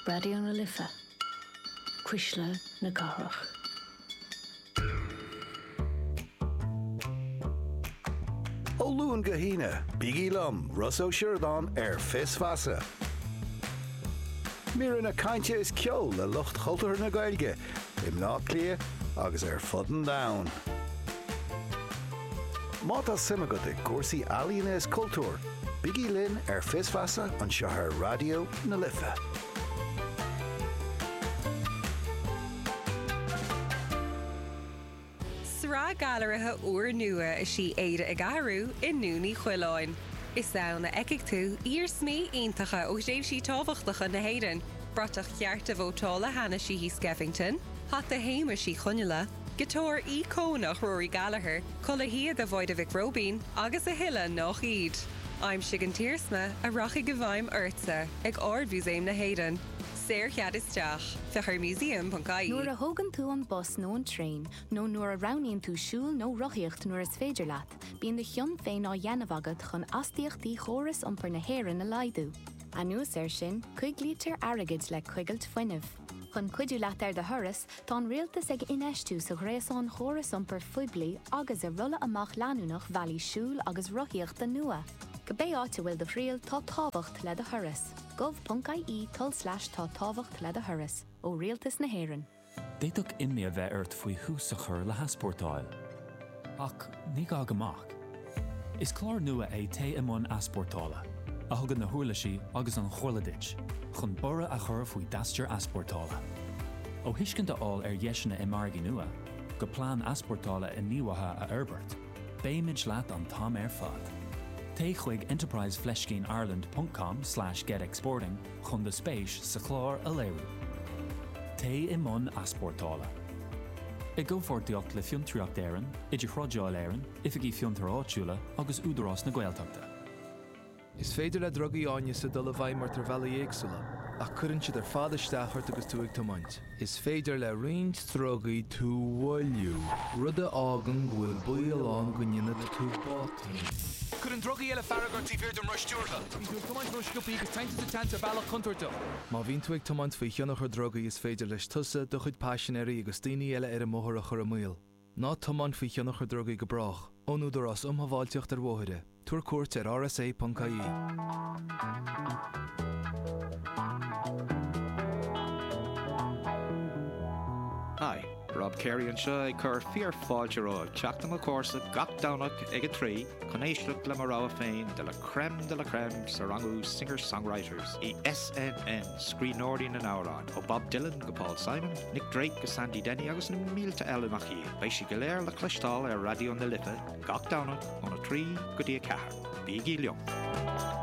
Raidió na Life, Cuisle na Cathrach. Ó Luan go hAoine, bígí liom, Ross Ó Siurdáin, ar Fios Feasa. Míreanna cainte is ceol le lucht chultúrtha na Gaeilge i mBleá Cliath agus ar fud an domhain. Má tá suim agat i gcúrsaí ealaíona is cultúir, Bígí linn ar Fios Feasa anseo ar Raidió na Life. Sraith gailearaithe úrnua is ea Éire ag Athrú i nDún Uí Choileáin. Is ann a fheicfidh tú iarsmaí iontacha ó thréimhsí tábhachtacha na hÉireann, bratach cearta vótála Hanna Sheehy Skeffington, hata Shéamuis Uí Chonghaile, giotár íocónach Rory Gallagher, culaith shíoda Mháire Mhic Róibín agus a thuilleadh nach iad. Aimsigh an t-iarsma a rachaidh i bhfeidhm ortsa ag Ard-Mhúsaem na hÉireann. Saorchead isteach. Féach ar museum.ie. Nuair a thógann tú an bus nó an traein nó nuair a roghnaíonn tú siúl nó rothaíocht nuair is féidir leat, bíonn do chion féin á dhéanamh agat chun astaíochtaí chóras iompair na hÉireann a laghdú. Anuas air sin, coiglítear airgead le coigilt fuinnimh. Chun cuidiú leat ar do thuras, tá an Rialtas ag infheistiú sa ghréasán chóras iompair phoiblí agus i rolladh amach leanúnach bhealaí siúil agus rothaíochta nua. Cibé áit a bhfuil do thriall, tá tábhacht le do thuras. gov.ie tulslais tá tábhacht le do thuras. Ó Rialtas na hÉireann. D'fhéadfadh imní a bheith ort faoi thús a chur le heaspórtáil. Ach ní gá go mbeadh. Is clár nua é Téigh i mbun Easpórtála, a thugann na huirlisí agus an chomhairle duit chun borradh a chur faoi d'aistear easpórtála. Ó thuiscint a fháil ar dheiseanna i margaí nua, go plean easpórtála inníomhaithe a fhorbairt, beimid leat an t-am ar fad. Téigh chuig enterprise fleiscín ireland ponc com slash get exporting, chun do spéis sa chlár a léiriú. Téigh i mbun easpórtála. I gcomhpháirtíocht le Fiontraíocht Éireann, Idirthrádáil Éireann, Oifigí Fiontair Áitiúla agus Údarás na Gaeltachta. Is féidir le drugaí áineasa dul i bhfeidhm ort ar bhealaí éagsúla, ach cuireann siad ar fad isteach ort agus tú ag tiomáint. Is féidir le roinnt drugaí tú a mhoilliú. Rud a fhágann go bhfuil baol ann go ndéanfaidh tú botún. Cuireann drugaí eile fearg ort taobh thiar den roth stiúrtha. Bíonn tú ag tiomáint ró-sciobtha agus téann tú sa tseans ar bhealach contúirteach. Má bhíonn tú ag tiomáint faoi thionchar drugaí is féidir leis tusa, do chuid paisinéirí agus daoine eile ar an mbóthar a chur i mbaol. Ná tiomáin faoi thionchar drugaí go brách. Ón Údarás um Shábháilteacht ar Bhóithre. Tabhair cuairt ar rsa.ie. Hi, Rob Carey anseo ag cur fíor fáilte romhaibh teacht i mo chomharsanacht gach Domhnach ag a trí chun éisteacht le mo rogha féin de la crème de la crème sa rangú Singer Songwriters i SNM, Scríbhneoirí na nAmhrán. Ó Bob Dylan go Paul Simon, Nick Drake go Sandy Denny agus na mílte eile nach iad, beidh siad go léir le cloisteáil ar Raidió na Life gach Domhnach óna trí go dtí a ceathair. Bígí liom!